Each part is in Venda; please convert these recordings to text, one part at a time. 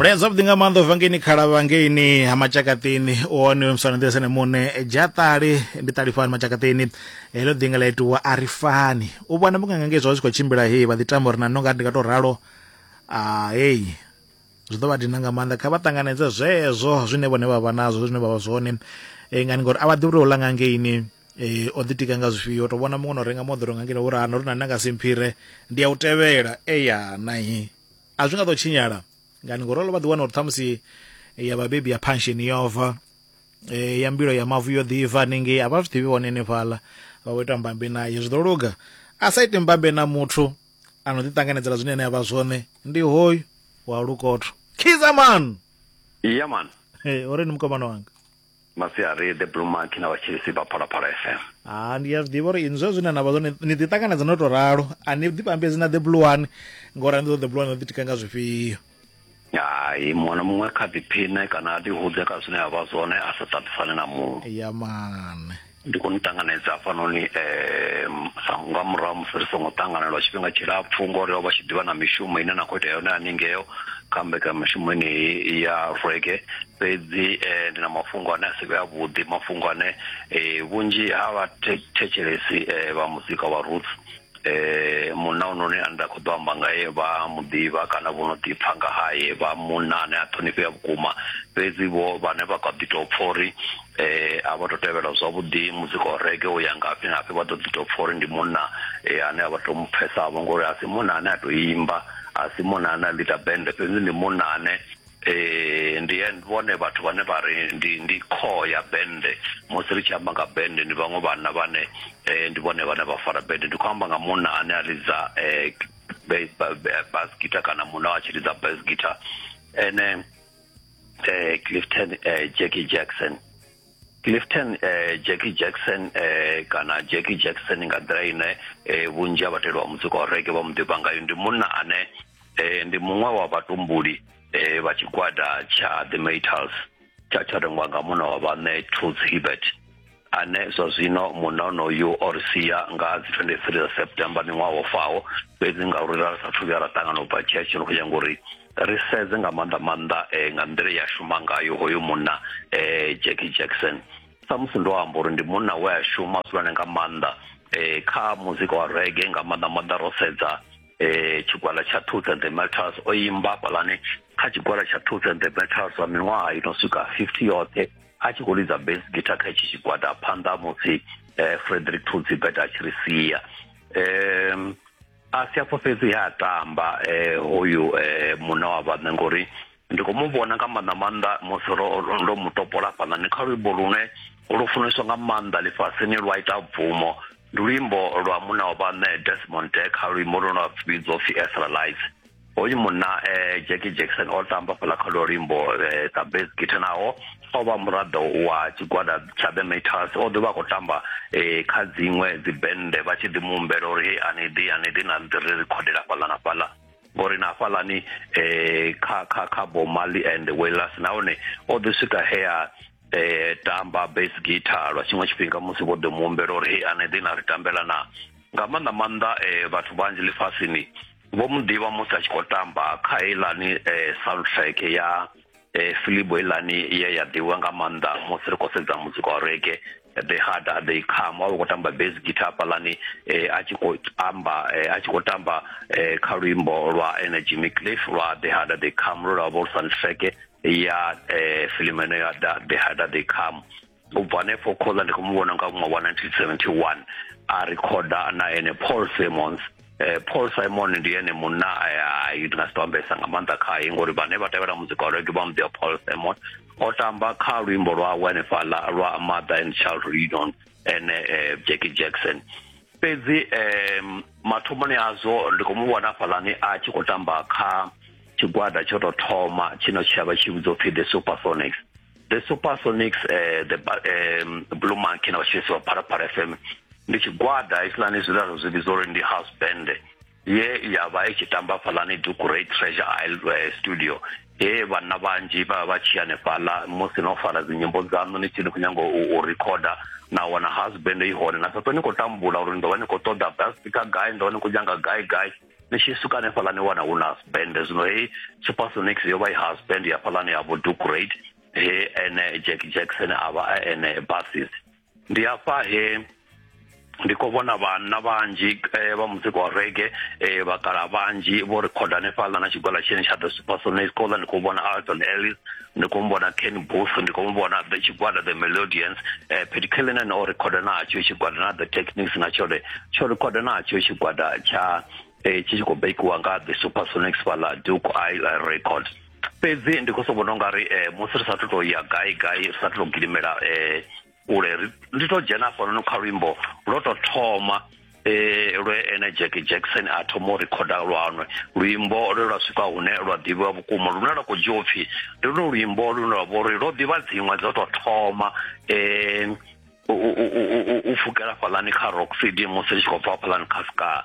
mulayo zwavhuḓi nga maanḓa ubva ngeini khalavha ngeini ha matshakaṱini u hone musana nḓila sene muṋe dzhaṱali ndi ṱalifani matshakaṱini heḽo ḓinga ḽa itiwa a ri fani u vhona munganga ngei zwa zwi khou tshimbila hei vha ḓi tamba uri na no nga ndi nga tou ralo hei zwi ḓo vha dina nga maanḓa kha vha ṱanganedze zwezwo zwine vhone vha vha nazwo zwine vha vha zwone ngani ngori a vha ḓivhi uri u ḽa nga ngeini eh o ḓitika nga zwifhio to vhona muṅwe no renga moḓoro nga ngeno vhurana uri na nanga simphire ndi ya u tevhela eya nahi a zwi nga ḓo tshinyala ngani ngoralo vha ḓiwana uri ṱhamusi ya vhabebi ya pension yova e, ya mbilo ya mavu yo ḓiva hanengei a vha zwi ḓivhi hone henefhaḽa vha vho ita mbambe naye zwi ḓo luga a sa ite mbambe na muthu a no ḓiṱanganedzela zwine ene a vha zwone ndi hoyu wa lukotho khizaman yeah man uri ni mukomana wanga masiari the blue mark na vhatshilisi vha phalaphala fm ha ndi a zwi ḓivha uri inzwa zwine na vha zwone ni ḓi ṱanganedza no tou ralo a ni ḓi pambedzi na the blue one ngori a ni ḓo the blue one ḓi tika nga zwifhio hai muṅwe na muṅwe kha ḓiphine kana a ḓihudze kha zwine a vha zwone a sa ṱaṱisane na muṅwe ya mane ndi khou ni ṱanganedza hafhanoni um sa nga murahu musi ri songo ṱangana lwa tshifhinga tshilapfhu ngori o vha tshi ḓivha na mishumo ine na khou itea yone haningeo kha mbekamishumo eneyi ya rweke fhedzi um ndi na mafhungo ane a si vhe avhuḓi mafhungo ane um vhunzhi ha vhathetshelesi um vha muzika wa roots munna ononi ane nda kho ḓo amba ngae vha muḓivha kana vho no ḓipfha nga haye vha munna ane a ṱhonifhea vhukuma fhedzi vho vhane vha kha ḓi tou pfha uri a vha to tevhela zwavhuḓi muzika wa rege u ya ngafhi ngafhi vha ḓo ḓi tou pfha uri ndi munna ane a vha to mu pfhesavho ngori a si munna ane a to imba a si munna ane a ḽita bende fhedzi ndi munna ane ee ndi vhone vhathu vhane vha ri ndi ndi core ya bende musi ri tshi amba nga bende ndi vhaṅwe vhanna vhane eh, ndi vhone vhane vha fara bende ndi khou amba nga munna ane a lidza eh, bass guitar kana munna a tshi lidza bass guitar ene eh, clifton eh, jackie jackson Clifton eh, Jackie Jackson eh, kana Jackie Jackson nga nḓila ine eh, vhunzhi ha vhateli vha muzika wa rege vha mu ḓivha ngayo ndi munna ane eh, ndi muṅwe wa vhatumbuli eh, vha tshigwada tsha The Metals tsha tsha rengwa nga munna wa vhaṋe Toots Hibbert ane zwa zwino munna onoyu o ri sia nga dzi 23 dza september miṅwaha wo faho fhedzi ngauri ra sa thu vhuya ra ṱangana u bva tshetsho no khou nyanga uri ri sedze nga maanḓa maanḓa eh, nga nḓila ya shuma ngayo hoyo munna eh, jackie jackson samusi ndo amba uri ndi munna we a shuma zwihulwane nga maanḓa eh, kha muzika wa rege nga maanḓa maanḓa ro sedza eh, tshigwala tsha tooth and the metals o imba fhalani kha tshigwala tsha tooth and the metals wa miṅwaha i no swika 50 yoṱhe a tshi khou lidza base guitar kha itshi tshigwada phanḓa musi eh, frederick tooth beta a tshi ri sia um a si afho fhedzi ha tamba eh, hoyu eh, muna wa vhaṋe ngori ndi khou mu vhona nga maanḓa maanḓa musi ro- ro- ndo mu topola fhanani kha luimbo lune lu funeswa nga maanḓa ḽifhasini lwa ita bvumo ndi luimbo lwa muna wa vhaṋe desmond deka luimbo lune lwa vhidzwa upfi estralize hoyu munna eh, jackie jackson o tamba fhala kha lwo luimbo eh, sa bas gita naho o vha muraḓo wa tshigwada tsha the maters o ḓo vha khou tamba eh, kha dziṅwe dzibennde vha tshi ḓi muhumbela uri hei ani ḓi ani ḓi na ḓi ri rikhodela fhaḽa na fhaḽa ngori na fhaḽani um kha kha kha bomali and wellas nahone o ḓi swika hea um tamba bas gita lwa tshiṅwe tshifhinga musi vho ḓo muhumbela uri hei ani ḓi na ri tambela na nga maanḓa maanḓa um vhathu vhanzhi ḽifhasini vho mu ḓivha musi a tshi khou tamba kha heilani um eh, soundtrack ya um filibo heilani ye ya ḓivhiwa nga maanḓa musi ri khou sedza muzika wa rege the harder they come wa vha khou tamba base guitar hafhaḽani um a tshi khou amba um a tshi khou tamba um kha luimbo lwa energy micliff lwa the harder they come lwo lwa vho lu soundtrack ya um filimu eno ya the harder they come u bva hanefho khoza ndi khou mu vhona nga ṅwaha wa 1971 a rikhoda na ene paul simons eh, paul simon ndi ene munna eh, ndi nga si to ambesa nga maanḓa khaye ngori vhane vha tevhela muzika wa rege vha muḓiwa paul simon o tamba kha luimbo lwawe hanefhaḽa lwa mother and child reunion ene eh, jackie jackson fhedzi um mathomoni azwo ndi khou mu vhona hafhaḽani a tshi khou tamba kha tshigwada tsho tou thoma tshino tshiavha tshi vhidzwa upfhi the supersonics the supersonics eh, the ba- eh, blue monkey na vhashisi vha phalaphala fm ndi tshigwada hetshiḽani zwilalo zwi vhidza uri ndi house band ye ya vha i tshi tamba fhalani dukuray treasure isle eh, studio he vhanna vhanzhi vha vha vha tshi hanefhaḽa musi no fara dzinyimbo dzaṋu ni tshi ni khou nyanga u, u recorder na wana house band i hone na sa ṱo ni khou tambula uri ni ḓo vha ni khou ṱoḓa bass speaker gai ni ḓo vha ni khou nyanga gai gai ni tshi suka hanefhaḽa ni wana hu na husband zwino hei supersonix yo vha i husband ya fhaḽani ya vho ducrate he ene jack jackson a vha a ene basis ndi afha he ndi khou vhona vhanna vhanzhi eh, vha muzika wa rege eh, vhakala vhanzhi vho rekhoda hanefhaḽa na tshigwala tshine tsha ḓo supersonix khola ndi khou vhona alton ellis ndi khou muvhona ken booth ndi khou muvhona the tshigwada the melodians eh, pedi kelenen o rekhoda natsho tshigwada na the techniques na tshone tsho rekhoda natsho tshigwada tsha eh, tshi tshi khou bakiwa nga the supersonics fhala duke isle record fhedzi ndi khou so vhona ungari eh, musi ri sathu to ya gai gai ri sathu to gidimela eh, kule ndi to dzhena hafhanoni kha luimbo lwo to thoma eh lwe ene Jack Jackson a thoma u rekhoda lwanwe luimbo lwe lwa swika hune lwa ḓivhiwa vhukuma lune lwa khou dzhiwa upfhi ndi luno luimbo lune lwa vha uri lwo ḓivha dziṅwe dzo to thoma um u pfukela fhaḽani kha rock cd musi ri tshi khou bva fhaḽani kha ska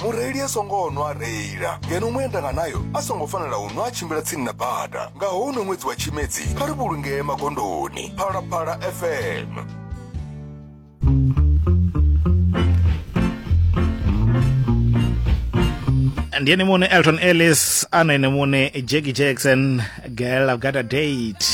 mureili a songo nwa a reila ngeno muendanganayo a songo fanela u nwa a tshimbila tsini na bada nga houno ṅwedzi wa tshimedzi kha ri vhulungee magondoni phalaphala fm ndi ene muṋe elton ellis ana ene muṋe jackie jackson girl i've got a date